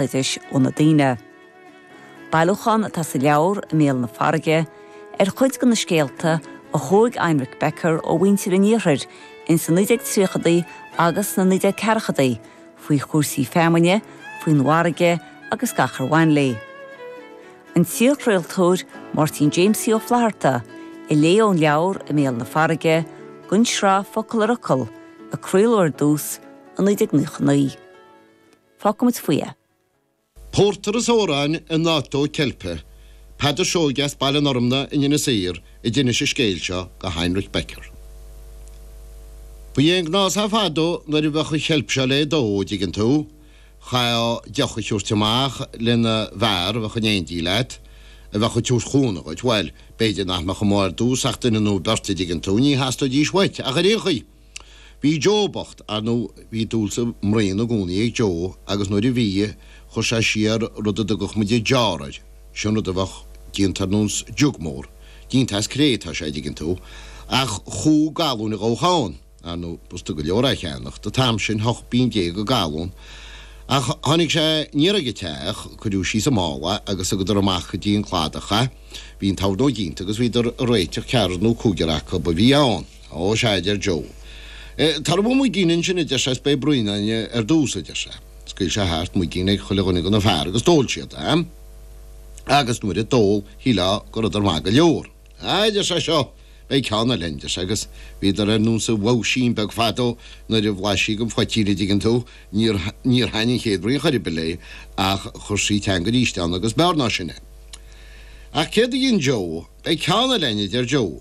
béaloidis ó na daoine. Bailiúchán atá sa leabhar, I mBéal na Farraige, ar chuid de na scéalta a thóg Heinrich Becker ó mhuintir an Iarthair ins na 1930idí agus sna 1940idí faoi chúrsaí feamainne, faoin bhfarraige agus gach ar bhain léi. An t-iarchraoltóir Máirtín Jamesie Ó Flatharta a léigh ón leabhar I mBéal na Farraige, don tsraith Focal ar Fhocal a craoladh ar dtús i 1999. Fágfaidh muid faoi é. Pórtar is amhráin in áit dó ceilpe. Peadar Seoige as Baile an Fhormna in Inis Oírr a d'inis an scéal seo go Heinrich Becker. Ba é an gnás é fadó nuair a bheadh an cheilp seo le dó, an dtuigeann tú, chaithfeá deoch a thiúirt amach le haghaidh na bhfear a bheadh in éindí leat, a bheadh ag tabhairt cúnamh dhuit. Bhuel, b'fhéidir nach mbeadh ann ar dtús ach duine nó beirt, a dtuigeann tú, ní theastóidís uait ach ar aon chaoi. Bhí Joe bocht, ar ndú, bhí dúil sa mbraon i gcónaí ag Joe agus nuair a bhí, chuir sé siar rud a dtugadh muid an jar air, sin rud a bheadh déanta ar nós jug mór, déanta as cré atá sé, dtuigeann tú, ach chúig ghalún a ghabhfadh ann, ar ndú, b'fhusta go leor é a cheannach, an t-am sin, hocht bpínn déag an galún. Ach tháinig sé aniar ag an teach, cuireadh síos sa mála agus thugadar amach go dtí an cladach é, bhí an tornóg déanta agus bhíodar ag réiteach ceathrar nó cúigear acu a bhí ann, Ó, sea, a deir Joe. Tabhair dhom muigín ansin, a deir sé, is beidh braon againn ar dtús, a deir sé. Scaoil sé thart muigín ag chuile dhuine go na fear agus d'ól siad é. Agus nuair a d'ól, shílfeá go rabhdar maith go leor. A, a deir sé, seo, beidh ceann eile ann, deir sé, agus bhíodar ar nós an mhousín beag fadó nuair a bhlais sí den phoitín, a' dtuigeann tú, níor, níor thaithin an chéad bhraon chor ar bith léi ach chuir sí teanga aríst ann agus b'fhearr ná sin é. Ach céard a dhein Joe? Beidh ceann eile ann, a deir Joe.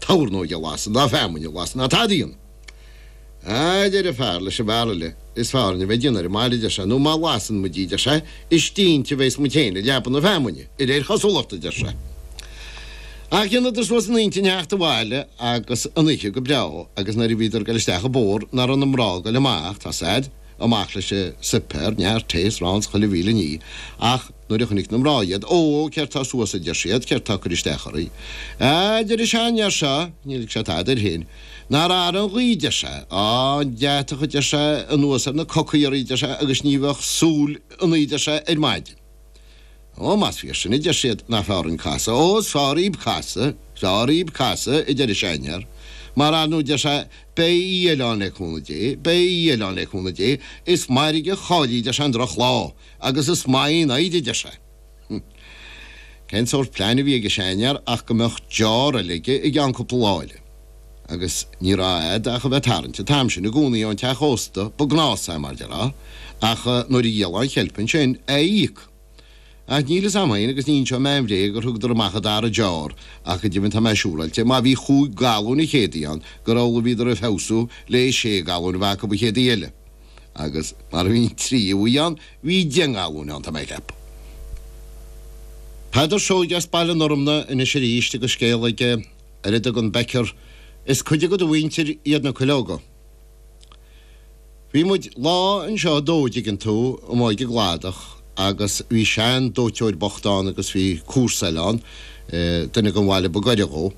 Tornóg a lasadh ná feamainn a lasadh ná tada ann. A deir an fear leis an bhfear eile, is fearr dhúinn a bheith ag déanamh ar an mbaile, deir sé, nó má lasann muid í, deir sé, is cinnte bhéas muid féin i leaba na feamainne, i réir chosúlachta, deir sé. Ach dheineadar suas a n-intinn theacht abhaile agus an oíche go breágh agus nuair a bhíodar ag goil isteach an bóthar nach raibh na mná ag goil amach, tá a fhios agat, amach leis an suipéar, neart tae is arán 's chuile mhíle ní, ach nuair a chonaic na mná iad, Ó, céard tá suas, a deir siad, céard tá ag cur isteach oraí? Á, a deir sé, an fear seo, níor lig sé tada air féin, nár athraigh an ghaoth, deir sé, á, an deatach, a deir sé, anuas ar na cocaí oraí, deir sé, agus ní bheadh súil ionaí, deir sé, ar maidin. Ó, más fíor sin a deir siad, nach fearr dhúinn casadh. Ó, is fearr dhíb casadh, is fearr dhíb casadh, a deir an seanfhear. Mar ar ndó deir sé, beidh oíche eile ann le cúnamh Dé, beidh oíche eile ann le cúnamh Dé. Is mairg a chaillfí, deir sé, an drochlá, agus is maith í an fhoighid, deir sé. Hum. Cén sórt plean a bhí ag an seanfhear ach go mbeadh deoir eile aige i gceann cúpla lá eile. agus ní raibh agat ach a bheith tarraingt an t-am sin i gcónaí ón teach ósta ba gnás é, mar a déarfá, ach nuair a dhíolfá an cheilp ansin, é a íoc. Ach níl fhios a'm fhéin, agus ní inseoidh mé aon bhréag, gur thugadar amach an dara deoir, ach go deimhin tá mé siúráilte, má bhí chúig ghalúin an chéad oíche ann, gur amhlaidh a bhíodar ag feabhsú le sé ghalúin a bheith acu an chéad oíche eile, agus mar a bhí an tríú hoíche ann, bhí deich ngalúin ann, tá mé ag ceapadh. Peadar Seoighe as Baile an Fhormna anois aríst agus scéal aige. ar a dtugann Becker, is cuid de do mhuintir iad na cuileoga. Bhí muid lá anseo ag dó, an dtuigeann tú, amuigh ag an gcladach, agus bhí sean dóiteoir bocht ann agus bhí comharsa eile ann, duine den bhaile ba gaire dhó.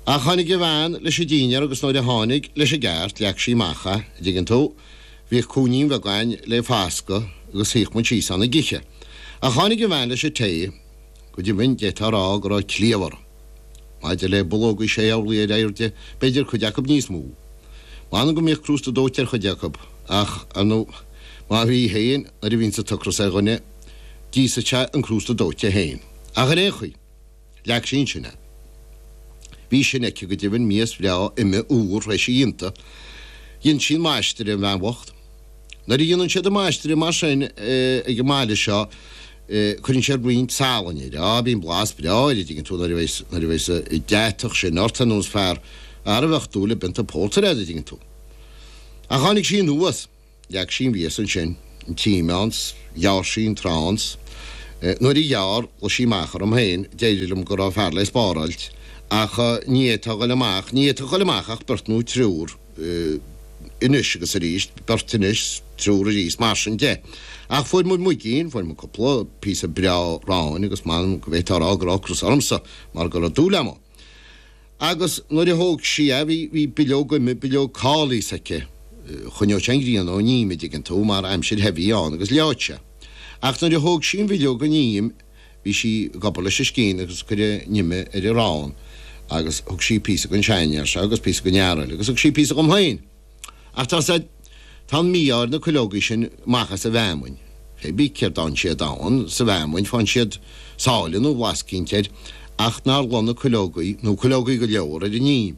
Ach tháinig a bhean leis an dinnéar agus nuair a tháinig, leis an gceart, leag sí amach é, an dtuigeann tú, bhíodh cúinnín bheag ann le fascadh agus shuíodh muid síos ann ag ithe. Ach tháinig a bhean leis an tae, go deimhin, d'fhéadfá a rá go raibh cliabh uirthi. Maidir le bulóga, sé orlaí ar airde, b'fhéidir, cuid acu níos mó. M'anam go mbíodh crústa dóite ar chuid acu, ach, ar ndóigh, má bhí féin, nuair a bhíonns an t-ocras ar dhuine, d'íosfadh sé an crústa dóite féin. Ach, ar aon chaoi, leag sí ansin é. Bhí sin aici, go deimhin, mias bhreá ime úr, thar éis a dhéanta. Dhein sí an maistreadh, an bhean bhocht. Nuair a dhéanann siad an maistreadh mar sin ag an mbaile seo, Cuireann sé roinnt salainn air. Á, bíonn blas breá air, a dtuigeann tú, nuair a bheidh's, nuair a bheidh's, an deatach sin ort ar nós fear a bheadh dúil i bpionta pórtair air, a dtuigeann tú. Ach tháinig sí anuas, leag sí an mhias ansin, an t-im ann, 's ghearr sí an t-arán, 's nuair a ghearr, ghlaoigh sí amach orm féin, d'éirigh liom go raibh fear le spáráilt, ach ní fhéadfá a ghoil amach, ní fhéadfadh a ghoil amach ach beirt nó triúr. Anois agus arís, beirt anois 's triúr arís mar sin de. Ach fuair muid muigín, fuair muid cúpla píosa breá aráin agus m'anam go bhféadfá a rá go raibh ocras ormsa mar go raibh dúil agam ann. Agus nuair a thóg sí é, bhí, bhí bileog ime, bileog cóilís aici. Choinneodh sé an ghrian ón im, a dtuigeann tú, mar aimsir the a bhí ann agus leáfadh sé. Ach nuair a thóg sí an bhileog den im, Bhí sí ag obair leis an scian agus ag cur an ime ar an arán agus thug sí píosa don seanfhear seo agus píosa don fhear eile agus thug sí píosa dhom féin. Ach tá siad, tá an mí-ádh ar na cuileogaí sin amach as an bhfeamainn. Fé bith céard a fhaigheann siad ann sa bhfeamainn, faigheann siad sáile nó blas eicínt air ach nár luigh na cuileogaí, nó cuileogaí go leor, ar an im.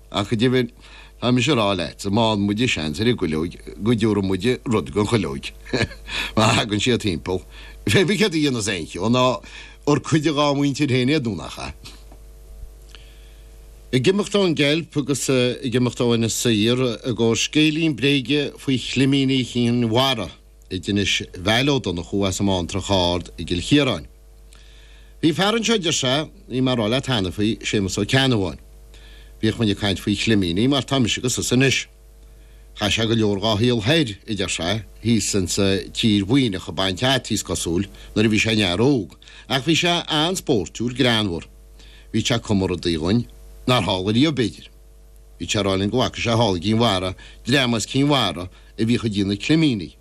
Ach go deimhin, tá mise ag rá leatsa, má fhaigheann muide seans ar an gcuileog, go dtiúrfaidh muide rud don chuileog, má thagann siad timpeall. Fé bith céard a dhéanfas aon cheo, nó ar cuid dhá mhuintir féin iad nó nach ea. Ag imeacht ón gceilp agus ag imeacht ó Inis Oírr i gcomhair scéilín bréige faoi chlimíní Chinn Mhara. a d'inis Vail Ó Donnchú as an mBantrach Ard i gCill Chiaráin. Bhí fear anseo a deir sé, bhí mé ag rá leat cheana faoi, Séamus Ó Ceannabháin. Bhíodh muinn ag caint faoi chlimíní mar tá mise agus tusa anois. Chaith sé go leor dhá shaol thoir, a deir sé, thíos insa tír Mhuimhneach ag baint fhataí, is cosúil, nuair a bhí sé ina fhear óg, ach bhí sé an-spóirtiúil, greannmhar. Bhíodh sé ag cumadh rudaí dhúinn nár tharla riamh, b'fhéidir. Bhíodh sé ag rá linn go bhfaca sé thall i gCinn Mhara, dream as Cinn Mhara, a bhíodh ag déanamh climíní.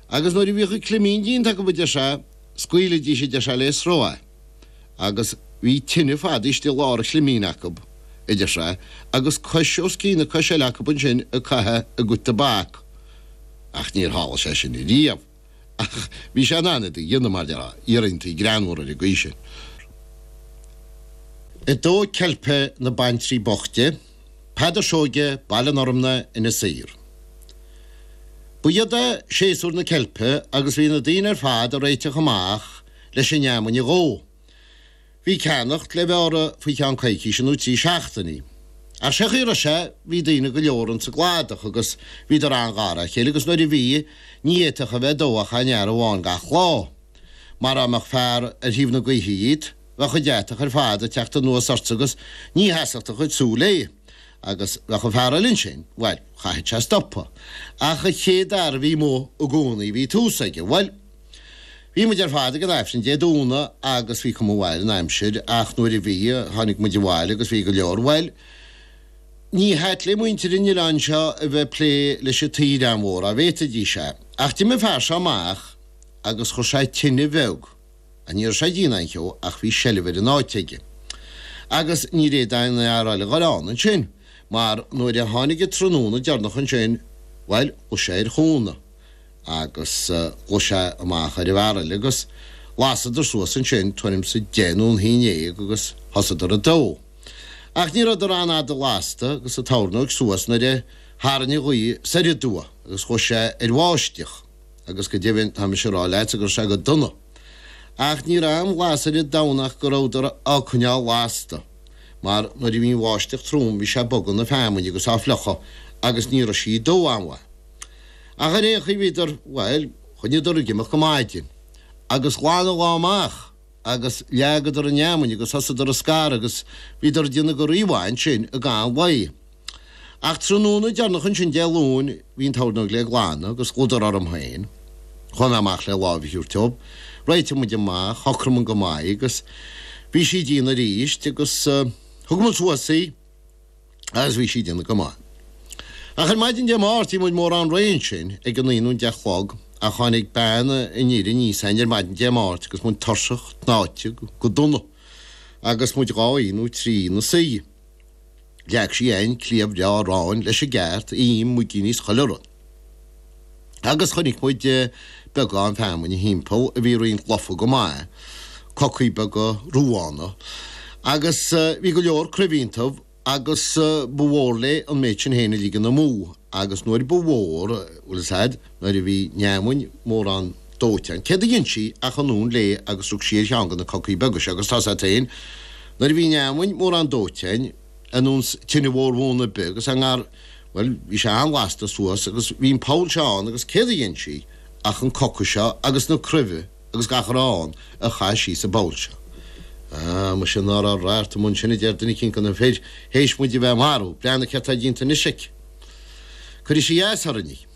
Agus nuair a bhíodh an climín déanta acu a deir sé, scaoilidís a deir sé le sruth é. Agus bhí tine fadaithe istigh i lár an chlimín acu a deir sé, agus cois os cionn na coise eile acu ansin ag caitheamh a gcuid tobac. Ach níor tharla sé sin riamh. Ach bhí sé in ann iad a dhéanamh, mar dhea, iarrachtaí greannmhara ar an gcaoi sin. Dó ceilpe na baintrí boichte. Peadar Seoige, Baile an Fhormna, Inis Oírr. Ba shiod é séasúr na ceilpe agus bhí na daoine ar fad ag réiteach amach leis an fheamainn a dhó. Bhí ceannacht le bheith orthu faoi cheann coicíse nó trí seachtainí. Ach sé an chaoi a raibh sé, bhí daoine go leor ins an gcladach agus bhíodar an-ghar dá chéile agus nuair a bhí, ní fhéadfadh a bheith ag dó ach aon fhear amháin gach lá. Mara mbeadh fear ar thaobh na gaoithe dhíot, bheadh an deatach ar fad ag teacht anuas ortsa agus ní sheasfadh do chuid súl é. Agus bheadh an fear eile ansin, bhuel, chaithfeadh sé stopadh. Ach an chéad fhear a bhí amuigh i gcónaí, bhí tús aige. Bhuel, bhí muid ar fad ag an Aifreann Dé Domhnaigh agus bhí cuma mhaith ar an aimsir, ach nuair a bhí, tháinig muid abhaile agus bhí go leor, bhuel, ní hait le muintir an oileáin seo a bheith ag plé leis an t-oileán mhór, á bhféadfaidís é. Ach d'imigh an fear seo amach agus chuir sé tine bheag. Ní raibh sé ag déanamh aon cheo ach bhí seilbh ar an áit aige. Agus níor fhéad aon fhear eile a ghoil ann ansin, mar nuair a tháinig an tráthnóna deireanach ansin, bhuel, ghlaoigh sé ar chúnamh, agus ghlaoigh sé amach ar an bhfear eile, agus lasadar suas ansin tuairim 's deich nó a haon déag agus thosadar ag dó. Ach ní rabhdar an-fhada lasta agus an tornóig suas nuair a tharraing an ghaoth soir aduaidh agus ghluais sé ar bháisteach. agus go deimhin tá mise ag rá leatsa go raibh sé go dona, ach ní raibh aon bhlas ar an domhan ach go rabhadar á coinneáil lasta, mar nuair a bhí an bháisteach trom bhí sé ag bogadh na feamainne agus á fliuchadh agus ní raibh sí ag dó an-mhaith. Ach ar aon chaoi bhíodar, bhuel, choinníodar ag imeacht go maidin, agus ghlan an lá amach agus leagadar an fheamainn agus thosaíodar a scaradh agus bhíodar ag déanamh go rímhaith ansin i gcaitheamh an lae. Ach tráthnóna deireanach ansin Dé Luain bhí an tornóg le glanadh agus ghlaodar orm féin. Chuaigh mé amach le láimh a thabhairt dóibh. Réitigh muid amach, shocraigh muinn go maith agus bhí siad dian arís agus thug muid suas í agus bhí sí dian go maith. Ach ar maidin Dé Máirt bhí muid mórán réidh ansin ag a naoi nó a deich a chlog ach tháinig bean an fhir aníos a'inn ar maidin Dé Máirt agus muid tuirseach, tnáite go dona agus muid dhá oíche nó trí ina suí. Leag sí an cliabh le aráin leis an gceart im, muigíní is chuile rud ann. Agus chonaic muid beagán feamainne thimpeall a bhí roinnt lofa go maith, cocaí beaga ruána, agus bhí go leor cruimhe iontaibh agus ba mhór léi an méid sin féin a ligean amú agus nuair ba mhór, bhfuil fhios a'd. nuair a bhí an fheamainn mórán dóite a'inn. Céard a dhein sí ach anonn léi agus rug sí ar cheann de na cocaí beaga seo agus tá sé ait féin. Nuair a bhí an fheamainn mórán dóite a'inn, an uan 's tine mhór bhuan ar bith agus a ngar, bhuel, bhí sé an-ghasta suas agus bhí an poll seo ann agus céard a dhein sí ach an coca seo agus na cruimhe agus gach a raibh ann a chaitheamh síos sa bpoll seo. Ah, muise ná raibh radharc an uan sin a deir duine eicínt de na fir th'éis muid a bheith a mharú. Breathnaigh céard tá dínta anois aici. Cuirfidh sí as orainn é.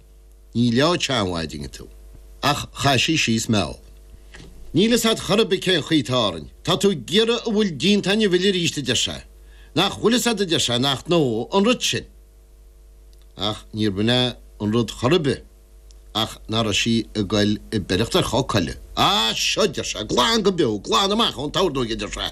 Ní leo tseanmhaidine tú. Ach chaith sí síos meall. Níl fhios a'd chor ar bith cén chaoi tá orainn. Tá tú ag iarraidh a bhfuil déanta a'inn a mhilleadh aríst a deir sé. Nach bhfuil fhios a'd a deir sé nach ndófaidh an rud sin. Ach níor bh'in é an rud chor ar bith ach nach raibh sí ag goil ag beireacht ar choca eile. Á seo deir sé, glan go beo, glan amach ón tornóig a deir sé.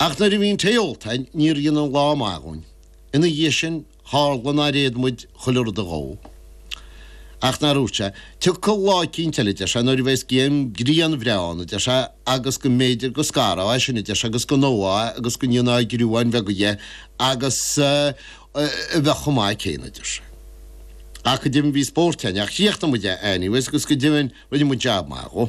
Ach nuair a bhí an tae ólta againn níor dhein an lá maith dhúinn. Ina dhiaidh sin, tharla nár fhéad muid chuile rud a dhó. Ach nár úirt sé, 'Tiocfaidh lá eicínt eile, a deir sé, 'nuair a bheas grian bhreá ann, a deir sé, 'agus go mb'fhéidir go scarfá é sin, a deir sé, 'agus go ndófá é agus go ndéanfá griúáin bheaga dhe agus a bheadh chomh maith céanna, a deir sé. Ach go deimhin bhí spórt againn ach chríochnaigh muid é anyways agus go deimhin rinne muid jab maith dhó.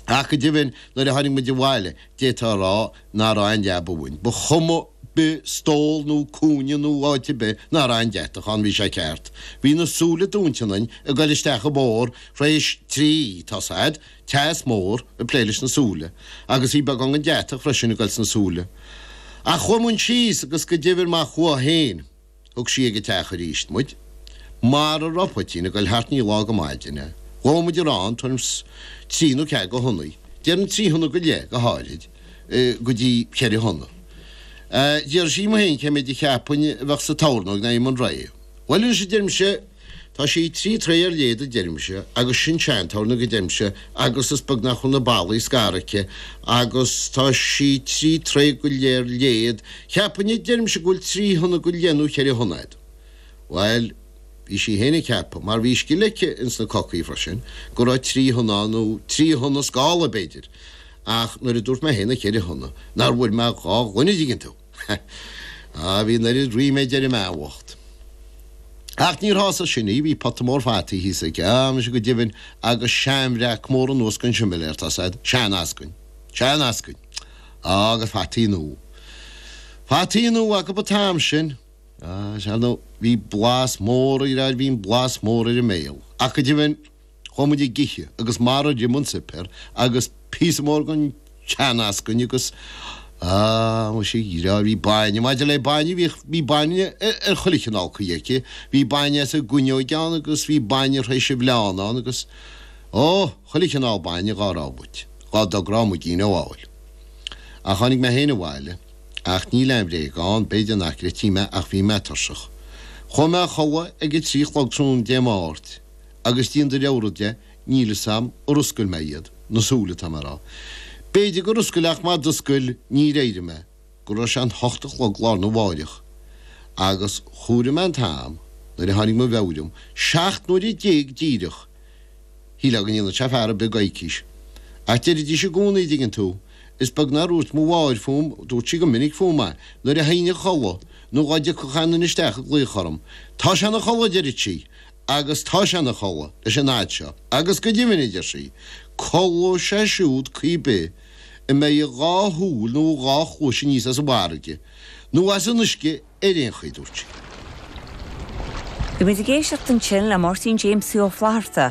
Ach go deimhin nuair a tháinig muid abhaile d'fhéadfá a rá nár fhan an leaba uainn. Ba chuma bith stól nó cúinne nó áit ar bith nár fhan deatach ann, bhí sé ceart. Bhí na súile dúinte ionainn ag goil isteach an bóthar tar éis trí, tá's a'd, teas mór ag plé leis na súile, agus bhí beagán den deatach freisin ag goil sna súile. Ach chuaigh muinn síos agus go deimhin má chuaigh féin, Thug sí ag a teach aríst muid. Mara rabh poitín ag goil thart ní lá go maidin é. Dhóigh muid ar an turn, trí nó ceathair go thonnaí, déarfainn trí thonna go leith go háithrid, go dtí cheithre thonna. D'iarr sí dhíom fhéin cé méid a cheapfainn a bheadh sa tornóig nuair a bhí muinn réidh. Bhuel anois a deirimse, Tá sí trí troigh ar leithead a deirimse agus sin seantornóg a deirimse agus is beag nach bhfuil na ballaí scartha aici agus tá sí trí troigh go leith ar leithead cheapfainn a deirimse go bhfuil trí thonna go leith nó cheithre thonna agat. Bhail bhí sí féin ag ceapadh, mar bhí scil aici ins na cocaí freisin, go raibh trí thonna ann nó trí thonna scála b'fhéidir ach nuair a dúirt mé féin na ceithre thonna nár bhfuair mé dhá ghloine an dtuigeann tú. Sea, bhí an oiread ríméid ar an mbean bhocht. Ach níor shásaigh sin í, bhí pota mór fataí thíos aici, á, muise go deimhin, agus seanbhreac mór anuas den simléar, tá fhios a'd, seaneascainn, seaneascainn! á, agus fataí nua. Fataí nua acub an t-am sin. Á, sea nó, bhí blas mór ar, bhí an blas mór ar an mbéile. Ach go deimhin. Chuaigh muid ag ithe agus marar ith muid an suipéar agus píosa mór gon tseaneascainn agus ah muise a dheartháir bhí bainne, maidir le bainne bhíodh, bhí bainne ar chuile chineál caoi aici, bhí bainne as an gcuinneoig ann agus bhí bainne thar éis a bhleán ann agus oh chuile chineál bainne dhá raibh muid, dhá dtogródh muid í nó amhail. Ach tháinig mé féin abhaile ach níl aon bhréag ann, b'fhéidir nach gcreidfí mé ach bhí mé tuirseach. Chuaigh mé a chodladh ag a trí a chlog tráthnóna Dé Máirt. Agus díon do leabhra de, níl fhios a'm, ar fhoscail mé iad? na súile atá mé a' rá. B'fhéidir gur fhoscail ach má d'fhoscail níor éirigh mé go raibh sé an hocht a chlog lá arna mháireach. Agus chomhair mé an t-am nuair a tháinig mo mheabhair liom, seacht n-uaire déag díreach! Shílfeá go ndéanfadh sé fear a' bith coicís. Ach deiridís i gcónaí a' dtuigeann tú, is beag nár úirt mo mháthair fúm, dúirt sí go minic fúm é, nuair a théinn a chodladh, nó dhá dtiocfadh éinne isteach ag glaoch orm, tá sé ina chodladh! deireadh sí, agus tá sé ina chodladh leis an fhad seo, agus go deimhin, a deir sí, codlóidh sé siúd caoi ar bith a mbeidh a dhá shúil nó a dhá chluais aníos as an bhfarraige, nó as an uisce ar aon chaoi, dúirt sí. Bhí muid ag éisteacht ansin le Máirtín Jamesie Ó Flaithearta.